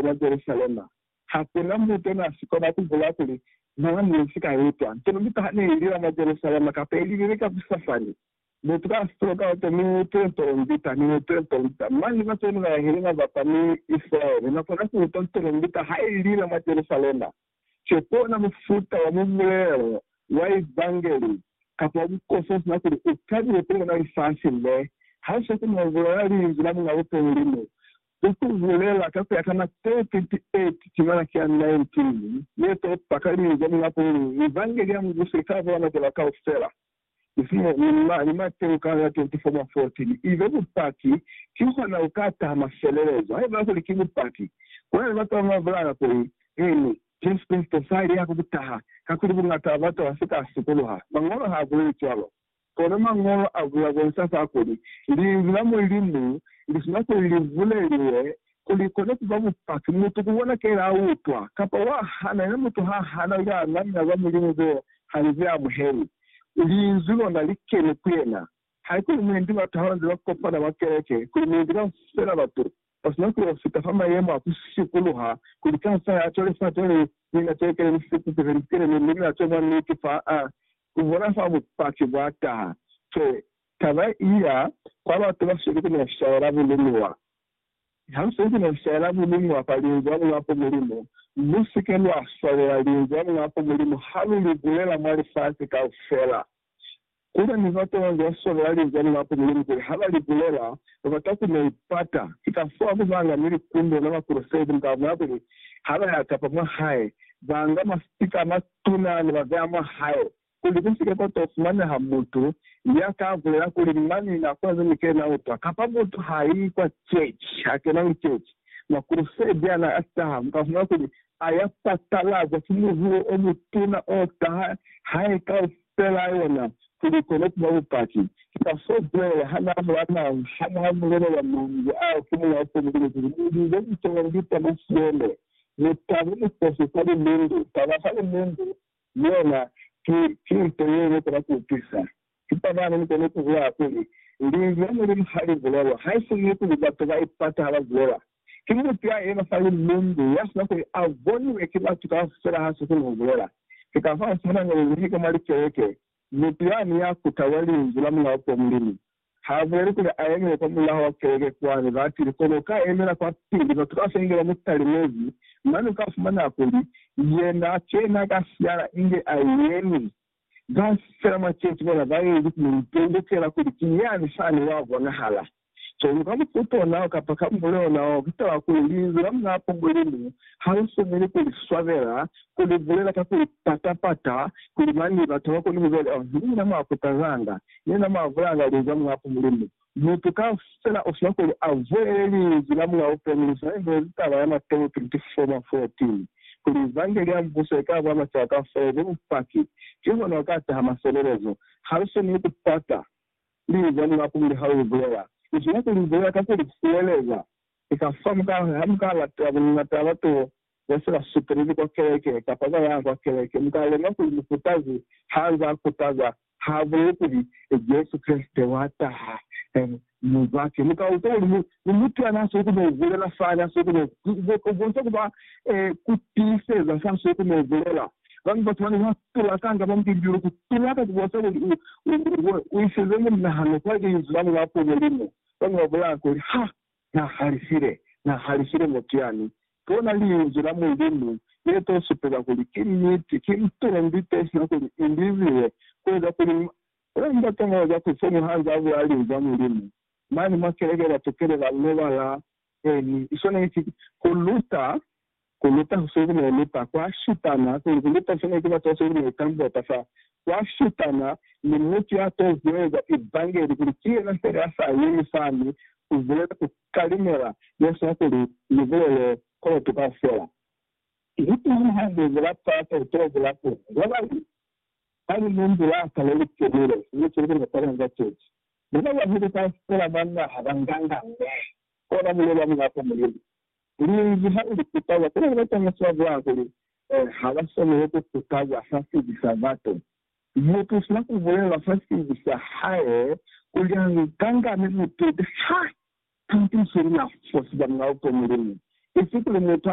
mwa Jerusalema. Ha ku na mutu n'a si kona ku bula kuli naa ne si ka itwa nto ndu taha ne i lila mwa Jerusalema kapa i lilile ka ku sa fani. Mutu ka si tolo kaoto mi ni utwile tolombita, ni utwile tolombita. Mañi ba koni ba yahile mwa ba kwa mi Isilaele na kona ku utwa tolombita ha i lila mwa Jerusalema? Ki ona mufuta wa mubulelo wa Evangeli kapa wa bukosi o si na kuli u tabile kuli ona lifasi le, ha ku sa koni ho bulela linzwi la Muñ'a Bupehi Mulimu, Ku ku bulela ka ku ya ka Mateo 28, timana ki ya 19 ye to pakaliza mwa kuli Mivangeli ya Mubuso i ka bola majalwa kaufela, isiñi Lulla ni Mateo ka ya 24 mwa 14, i be bupaki. Kihona ku ka taha mafelelezo. Haiba kuli ki bupaki, kuna ni batu ba ba bulala kuli, Eeni, Jesu Kreste sa li ya ku taha, kakuli buñata bwa batu ba si ka sikuluha. Mañolo ha buleli cwalo. Kono Mañolo a buya bonsa fa kuli, Linzwi la Mulimu li sina kuli li buleliwe ku li kone ku ba bupaki, mutu ku bona ke la utwa, kapa wa hana, yena mutu ha hana u ya namela za Mulimu ze ha li ze amuhelwi, Linzwi lona li keni ku yena. Haikuli muindi ba taha ba nze ba kopana mwa keleke, kuli muindi kaufela batu Ba sina ku fita fa mayemo a ku sikuluha kuli Kaisare a tole fate ni mina teekele ni sipuku ze litele mi Mulimu a twe mwa niti fa a ku bona fa bupaki bwa taha. Ki taba i ya kwa batu ba sweli ku meshaya la bulumiwa. Ha lu sweli ku meshaya la bulumiwa kwa Linzwi la Muñ'a ku Mulimu, lu si ke lwa swalela Linzwi la Muñ'a ku Mulimu ha lu li bulela mwa lifasi kaufela. Kuli mi ba kona kua swanela linzwa ni bapu Mulimu kuli ha ba li bulela, ba bata ku mu pata. Ki ka fao mi ba nga ni likumbo na Bakreste ni ba mwa kuli ha ba ya kapa mwa hae, ba nga masipika a matuna ni ba beya mwa hae, kuli ku si ke kwa to fumaneha mutu ya ka bulela kuli, Mani na kona ze ni kile na utwa, kapa mutu ha i kwa ceci, ha kena liceci. Makrusede a na a taha, mi ba mwa kuli A ya patalaza ki muhulo o mutuna o taha hae kaufela yona kuli i kone kuba bupaki. Ki ka fo Joele ha n'a bula naho ha n'a bulelela manzwi ao ki muñ'a tembele kuli, Mu lize litolo ngi tama siende, mu tabe mukosi kwa limundu, taba fa limundu, Mi yona ki, ki nto ye ne kona ku utwisa. Ki taba ne ni kona ku hwa, kuli, Linzwi la Mulimu ha li bulelwa, haisizwe kuli batu ba ipata ha ba bulela. Ki mutu ya yena fa limbundu, ya sina kuli a boniwe ki batu kaufela ha sa koni ku bulela. Ki ka fao sihana ne ni nahika mwa likeleke, mutu yani ya kutahwa Linzwi la Mulao kwa Mulimu, Ha boni kuli a yemile kwa mulaho wa keleke kwani, batili, kono ka yemela kwa pili. Batu kaufela inge ba mu talimezi, mane uka fumana kuli yena a kena ka siala inge a yemi. Kaufela mwa keshi bona ba ezi ku mu tondokela kuli ki yani fani wa bonahala. Kono ka mufuta onao kapa ka mule onao, ki taba kuli Linzwi la Munapo Mulimu ha li fumi ni ku li swabela, ku li bulela ka ku li pata-pata, kuli mane batu ha ba koni ku kwa kuli, Oh, ni mina mwa kutazanga. yena mwa bulanga luli ka mulapo Mulimu. Mutu kaufela usika kuli a vuele Linzwi la Mulao peni lu sa ihwezi taba ya Mateo 24 mwa 14, kuli Evangeli ya Mubuso ika bula macaba kaufela ibe bupaki, kihona uka taha maselelezo. Ha lu swaneli ku pata Linzwi la Mulapo muli ha lu li bulela. Lu swanela ku li bulela ka ku li fueleza. Eka fa mwa kale ha mu ka latela bungata bwa tulo ne si la sutulili kwa keleke kapa kwa ya kwa keleke, mu ka lemuha kuli mukutazi ha nze a kutaza ha a buleli kuli, Jesu Kreste wa taha mu batu. Mu ka utwa kuli ni mutu ya n'a siko ku n'o bulela fani, a siko ku n'o bonisa ku ba ku tiiseza s'a siko ku n'o bulela. Bañwi batu ba ne ba tulakanga mwa mubimbilu, ku tulaka ku bonisa kuli u isize munahano kwa Linzwi la Mulapumulimo. Bañwi ba bulaya kuli, Ha Na halisile, Na halisile muteani. Bona Linzwi la Mulimu le to supeza kuli ki niti, ki mutulo, ndi to sina kuli i liziwe, ku eza kuli ma, bona Ndat'a mwa eza kuli fomu ha nz'a bula Linzwi la Mulimu, mane mwa keleke ba tukele ba lobala, e ni, i swaneli ki ku luta Ku luta ku se ku ne lu ta kwa shutana, kuli ku luta se ne ku batwa se ku ne tambwa ka fa kwa shutana, ni mutu ya to hueza Evangeli kuli ki yena fela ya sa yemi fani ku bulela ku kalimela ye sina kuli ni bulele koloto kaufela. Ni tuna hande ze la pata ku to bula kona. Ba bañwi ba li mu mbulaka le li kenile, sina cwale ku ne kwa kanga ceci. Ba ba bahulu kaufela ba naha ba nganga ne, kona buloi bwa Mulapa Mulimu. Kulinzi ha uli kutawa, kuna ni batanga swa bwa kuli ha ba swaneli ku kutawa fa sibi sa batu. Mutu usina ku bulela fa sibi sa hae kuli a nganga ni butete ha a tiiseli na fo siba mwa ku Mulimu, isi kuli mutu